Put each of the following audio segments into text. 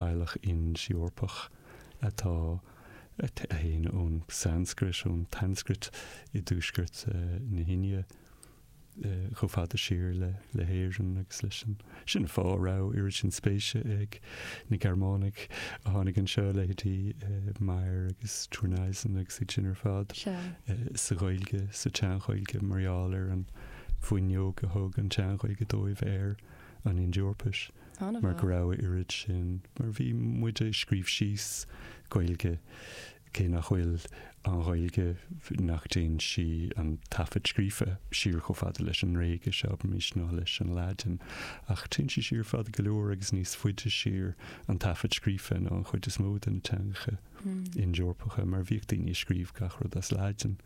Teaghlach Ind-Eorpach a théann ón Sanscrait, ón tSanscrait i dtuaisceart na hIndia, chomh fada siar le hÉirinn agus leis an, sin an fáth a raibh oiread sin spéise ag na Gearmánaigh a tháinig anseo, leithéidí Meyer agus Thurneysen agus iad sin ar fad, sa Ghaeilge, sa tSean-Ghaeilge mar gheall ar an bhfuinneog a thug an tSean-Ghaeilge dóibh ar. an Ind-Eorpais mar go raibh a oiread sin, mar bhí muid a' scríobh síos Gaeilge cé nach bhfuil an Ghaeilge, nach dtéann sí, an taifead scríofa siar, chomh fada leis an nGréigis, abraimis, ná leis an Laidin. Ach téann sí siar fada go leor agus níos faide siar, an taifead scríofa, ná an chuid is mó de na teangacha Ind-Eorpacha mar bhíodh daoine a' scríobh gach rud as Laidin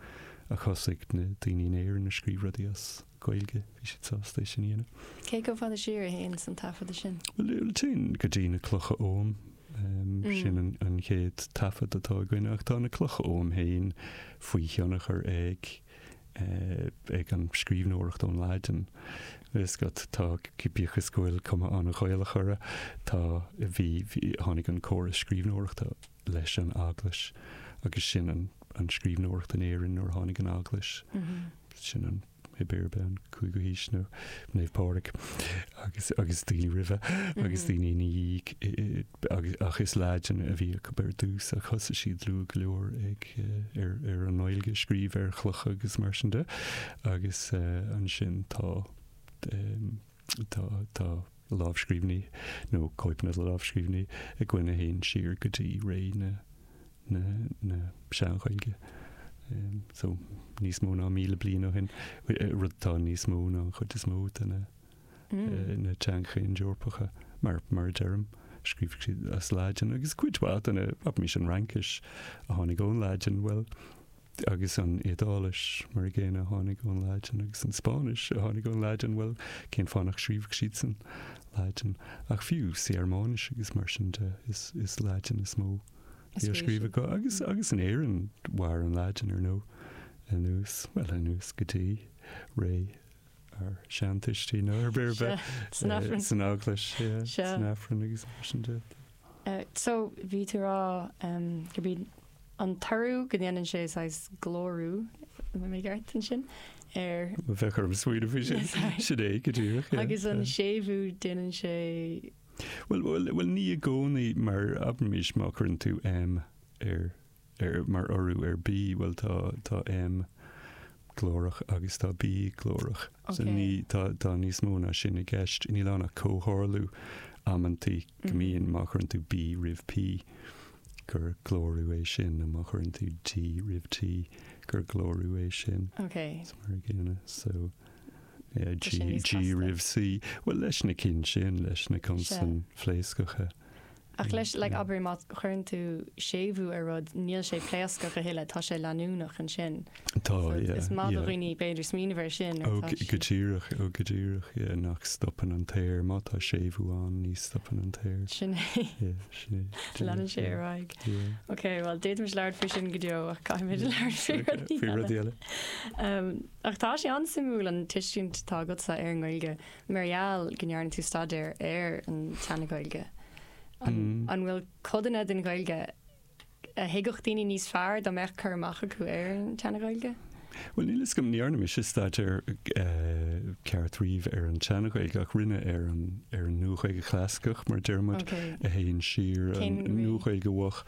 ach thosaigh na daoine in Éirinn a' scríobh rudaí as. Gaeilge, bhí siad sásta é sin a dhéanamh. Cé chomh fada siar a théanns an taifeadadh sin? Bhuel, téann go dtí na clocha oghaim, sin an chéad taifead atá againn, ach tá na clocha oghaim féin faoi thionchar ag, ag an scríbhneoireacht ón Laidin. Is go, tá, bíodh is go bhfuil cuma an-Ghaelach orthu, tá, bhí, tháinig an córas scríbhneoireachta leis an eaglais agus sin an scríbhneoireacht in Éirinn nuair a tháinig an eaglais. Mm-hmm. sin nó, pé ar bith, an cúigiú haois, Naomh Pádraig agus agus daoine roimhe agus daoine ina dhiaidh eh, agus ach is Laidin a bhí acu ar dtús ach thosaigh siad luath go leor ag eh, ar, ar an nGaeilge a scríobh ar chlocha agus mar sin de agus eh, ansin tá eh, tá, tá lámhscríbhinní nó cóipeanna de lámhscríbhinní againn a théann siar go dtí ré na Sean-Ghaeilge, so níos mó ná míle bliain ó shin, rud atá níos mó ná an chuid is mó de na teangacha Ind-Eorpacha, mar a deirim. Scríobhadh siad as Laidin, agus cuid mhaith de na, abraimis, an Fhraincis a tháinig ón Laidin, bhuel, Agus an Iodáilis, mar an gcéanna, a tháinig ón Laidin, agus an Spáinnis, a tháinig ón Laidin, bhuel, cén fáth nach scríobhadh siadsan Laidin? Ach fiú sa Ghearmáinis agus mar sin de, is Laidin is mó a bhí á scríobh acu. Agus, agus in Éirinn, mhair an Laidin, ar ndóigh, anuas, bhuel, anuas go dtí ré ár seantuistí, nó pé ar bith, san Aifreann, san Eaglais, san Aifreann agus mar sin de. So, bhí tú ag rá go mbíonn an toradh go ndéanann sé saghas glórú, an mbeidh mé i gceart ansin? ar. bheadh orm smaoineamh faoi sin, sin é go díreach. agus an séimhiú déanann sé. bhuel, bhuel, bhuel ní i gcónaí mar abraimis má chuireann tú M ar, ar, mar urú ar B, bhuel tá, tá M glórach agus tá B glórach. so Ok. ní, tá, tá níos mó ná sin i gceist. Níl ann ach comhtharlú amantaí go mbíonn má chuireann tú B roimh P. gur glórú é sin nó má chuireann tú D roimh T gur glórú é sin. Ok. Is mar a gcéanna. So, yeah, G, G roimh C. Bhuel, leis na cinn sin, leis na consain phléascacha. Ach leis, like, abair, má chuireann tú séimhiú ar rud, níl sé pléascach a thuilleadh, tá sé leanúnach ansin. Tá, yeah. Is maith do dhaoine b'fhéidir smaoineamh air sin. Ó, go díreach, ó, go díreach, yeah, nach stopann an t-aer, má tá séimhiú ann, ní stopann an t-aer. Sin é. Yeah, sin é. Leanann sé ar aghaidh. Yeah. Ok, bhuel, d'fhéadfaimis labhairt faoi sin go deo, ach caithfimid labhairt faoi rud eile. Faoi rud eile. Um, ach tá sé an-suimiúil an tuiscint atá agatsa ar an nGaeilge, mar gheall go ndearna tú staidéar ar an tSeana-Ghaeilge. An, an bhfuil codanna den Ghaeilge a thuigfeadh daoine níos fearr dá mbeadh cur amach acu ar an tSeana-Ghaeilge? Bhuel, níl 'fhios agam, ní dhearna mise staidéar ceart riamh ar an tSeana-Ghaeilge, ach rinne ar an, ar an Nua-Ghaeilge Chlasaiceach, mar a deir muid, Ok. a théann siar, an Cén mhí? Nua-Ghaeilge Mhoch,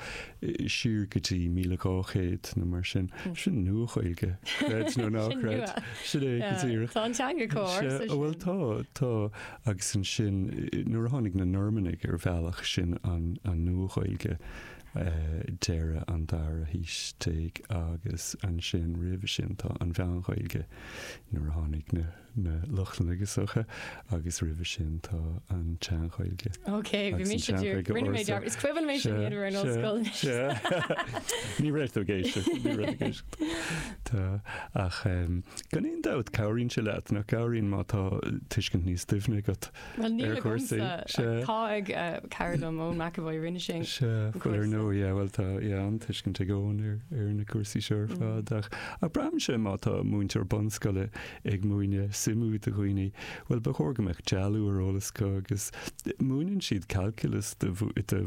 siar go dtí 1200 nó mar sin. Sin Nua-Ghaeilge, creid é nó ná Sin creid. nua. Sin é go Yeah. díreach. Tá an teanga comh Sea, ársa bhuel sin. tá, tá. agus ansin nuair a tháinig na Normannaigh ar bhealach sin an Nua-Ghaeilge deireadh an dara haois déag agus ansin roimhe sin tá an Mheán-Ghaeilge nuair a tháinig na Lochlannaigh isteach agus roimhe sin tá an tSean-Ghaeilge Ok, bhí mise ag iarraidh, rinne mé dearmad, is cuimhin mé sin, iad a raibh in ollscoil anois. Ní raibh tú ag éisteacht, ní raibh tú ag éisteacht. Tá, ach gan aon dabht cabhraíonn sé leat, nach gcabhraíonn má tá tuiscint níos doimhne agat ar chúrsaí. Tá cara dom, Eoin McEvoy, rinne sé an cúrsa. Sea, ar ndóigh, yeah, bhuel tá an-tuiscint ag Eoin ar na cúrsaí seo ar fad, ach braithimse má tá múinteoir bunscoile ag múineadh suimiú do dhaoine, bhuel ba chóir go mbeadh dealú ar eolas acu agus múineann siad calculus do mhúinteoirí.